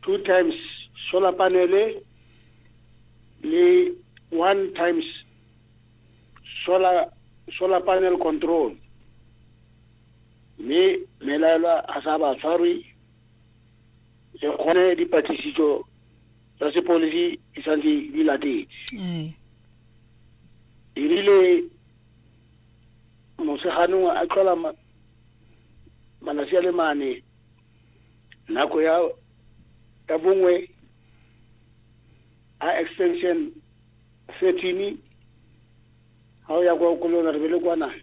two times solar panele le one times solar solar panel control mme melaelwa a sa ba tshwarwe le kgone dipatlisiso tsa sepodisi di santse di latetse erile moseganong a tlhola malatsi a le mane nako ya ya bongwe a extension 13 ga o ya kwa kolona re be le kwana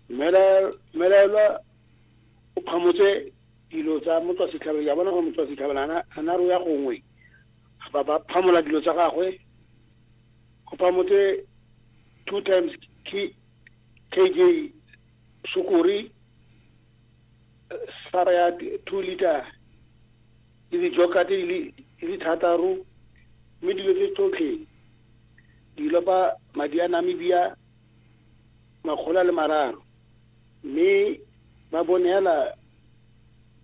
mmelaelwa o kgamotse dilo tsa motswa setlhabelo ya bona gore motswa setlhabelo ga na ro ya gongwe ba ba phamola dilo tsa gagwe go phamotse two times key KJ Sukuri sara ya two liter le dijoka tse di le thataro mme dilo tse tsotlhe di lopa madi a namibia makgolo a le mararo mme ba bonela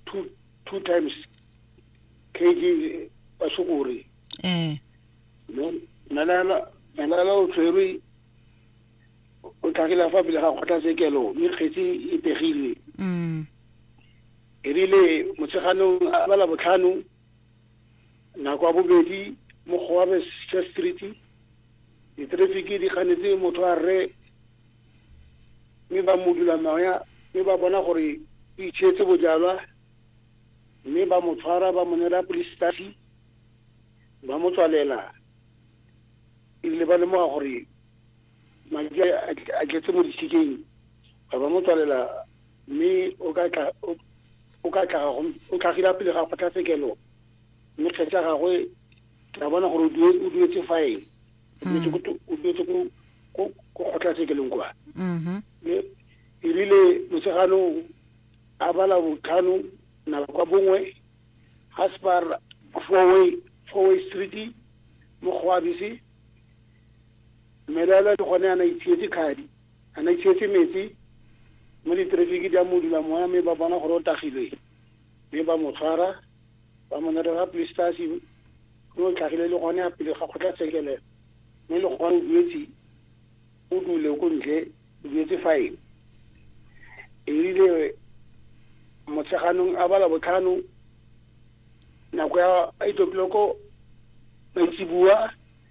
two, two times kg basukuri eh. melala o tshwerwe o tlhagile fa pele ga kgotlatshekelo mme kgetsi e pegilwe mm. erile motsheganong a bala botlhano nako ya bobedi mo goabe church street ditrafiki di ganetse motho a rre mme ba mo dula moya mme ba bona gore o itshetse bojalwa mme ba mo tshwara ba mo nela police stasi ba mo tswalela ebile ba lemoga gore Madi a tletse mo disikeng ba ba mo tswalela mme o ka tla o ka tla go o tlhagile pele ga kgotlatshekelo mme kgetse ya gagwe tla bona gore o duetse fine o duetse ko ko kgotlatshekelong kwa mm-hmm. mme e rile motshegano a bala botlhano na kwa bongwe ga se ba four way four way street mo go abise Mmelelo le gone a na itshietse khadi, a na itshietse metsi mme diterefiki di a modula moya mme ba bona gore o tagilwe mme ba mo tshwara ba mo nerela police stasi mme o tlhagile le gone a pele ga kgotlatshekelo mme le gone o duetse o dule ko ntle o duetse fine erile motsheganong a bala botlhano nako ya eight o'clock maitseboa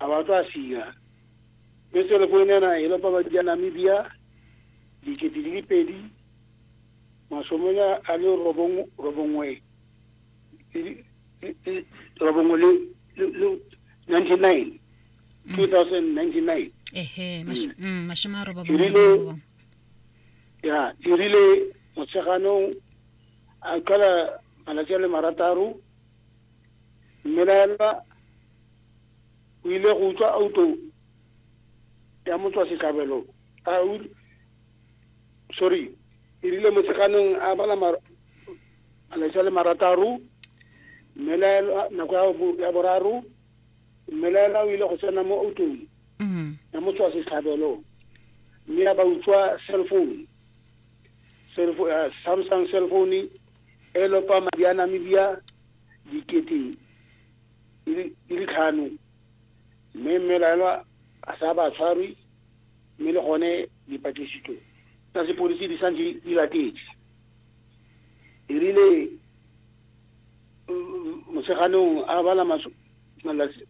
a ba tla siya. Mme selefoene ena e lopa ba dija Namibia dikete di le pedi masomenya a le robong robongwe robongwe le 99 2099 ehe masho- mm, mashome a roba Erile- bongwe ya e rile motsheganong a qala malatsi a le marataro mmelaelwa o ile go utlwa auto ya motswa setlhabelo a sorry e rile motsheganong a bala malatsi a le marataro mmelaelwa nako ya boraro mmelaelwa o ile go tsena mo autong mm. ya motswa setlhabelo mme ya ba utswa cell phone eh, samsung cell phone e lopa madi a namibia dikete di le tlhano mme mmelaelwa a sa ba tshwarwe mme le gone dipatlisiso tsa sepodisi di santse di latetse e rile motsheganong a bala malatsi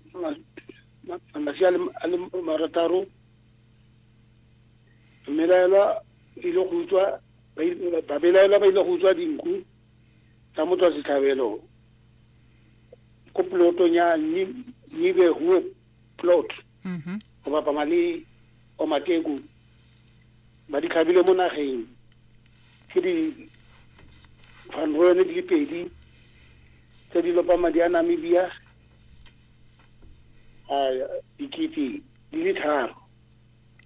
a le marataro mmelaelwa ile go utswa babelaelwa ba ile go utswa dinku tsa motswasetlhabelo ko polotong ya nibehuwe plot mm-hmm. go bapama le omateku ba di tlhabile mo nageng ke di fanroene di le pedi tse di lopa madi a namibia a dikete di le tharo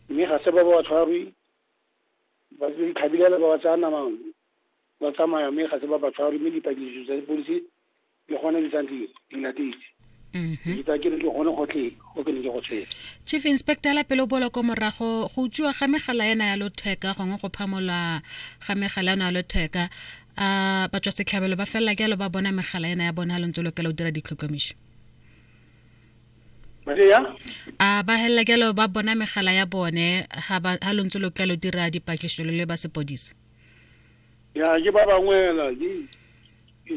mme ga se ba ba tshwarwe ba di tlhabilela ba ba tsaya namang ba tsamaya mme ga se ba ba tshware mme dipatlisiso tsa sepodisi di gone di santse di latetse mm-hmm. ditsa ke re ke gone gotlhe go ke ne ke go tshwere chief inspector la pele o bola ko morago go utswiwa ga megala ena ya lotheka gongwe go phamola ga megala ena ya lotheka a batswa setlhabelo ba felela ke alo ba bona megala ena ya bona lo ntse lo kela o dira ditlhokomiso a ba helela ke alo ba bona megala ya bone ha lo ntse lo kela o dira dipatlisiso le ba sepodisi ya ke ba bangwe fela ke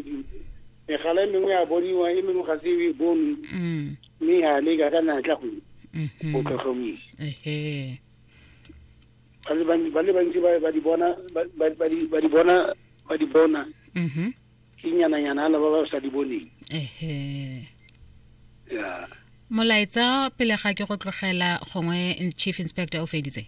megala e mengwe ya boniwa e mengwe ga se e bone mm. mme ya leka ka natla go mm-hmm. go tlhotlhomisa ba le bantsi ba di bona ba di bona ba di bona mm-hmm. ke nyananyana ala ba ba sa di boneng ya molaetsa pele ga ke go tlogela gongwe chief inspector o feditse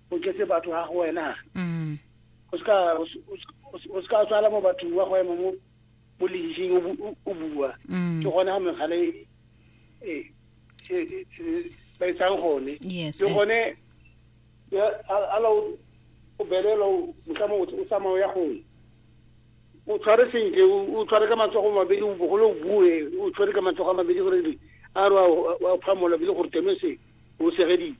o tletse batho ga go wena mm. o se ka tswala mo bathong wa go ema mo mo leiseng o bua mm. ke gone ga mekgale e, e, e, ba etsang gone le gone ala o belela motlamo o tsamao ya gone o tshware sentle o tshware ka matsogo mabedi o bogole o bue o tshware ka matsogo a mabedi gore a re wa phamola bile gore teme se o segeditse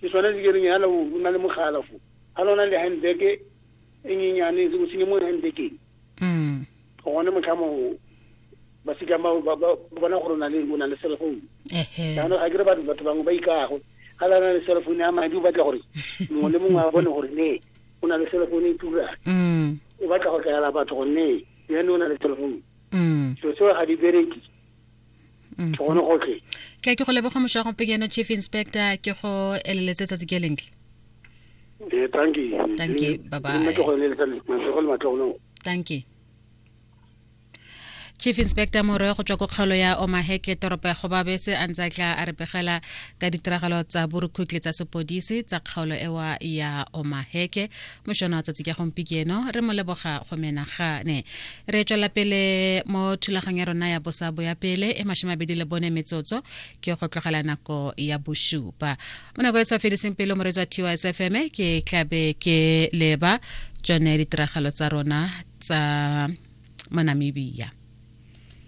Ke sone se ke reng hala o na le mogala fo. Hala o na le handbag e nyenyane se o senye mo handbageng. Mm. Go gone motlhamo ba sika ba ba bona gore na le o na le cell phone. Ehe. Jaanong ga ke re batho batho bangwe ba ikago. Hala na le cell phone ya madi o batla gore mongwe le mongwe a bone gore ne o na le cell phone e tura. Mm. O batla go tlala batho gore ne yone o na le cell phone. Mm. So seo ga di bereke. mm-hmm. ke gone gotlhe ke ke go leboga mošago pekeno chief inspector ke go eleletse tsatsi ke lentle eh, thank you thank you bye bye thank you chief inspector morwe go tswa ko kgaolo ya omaheke toropo ya gobabese a ntse a tla a re pegela ka ditiragalo tsa borukhutle tsa sepodisi tsa kgaolo ewa ya omaheke mošono wa tsatsi ka gompi ke eno re mo leboga go menagane re tswela pele mo thulaganyo ya rona ya bosabo ya pele e mashomabedi le bone metsotso ke go tlogela nako ya bosupa mo nako e sa fediseng pele mo re tswa ts fm ke tlabe ke leba tsone ditiragalo tsa rona tsa mo namibia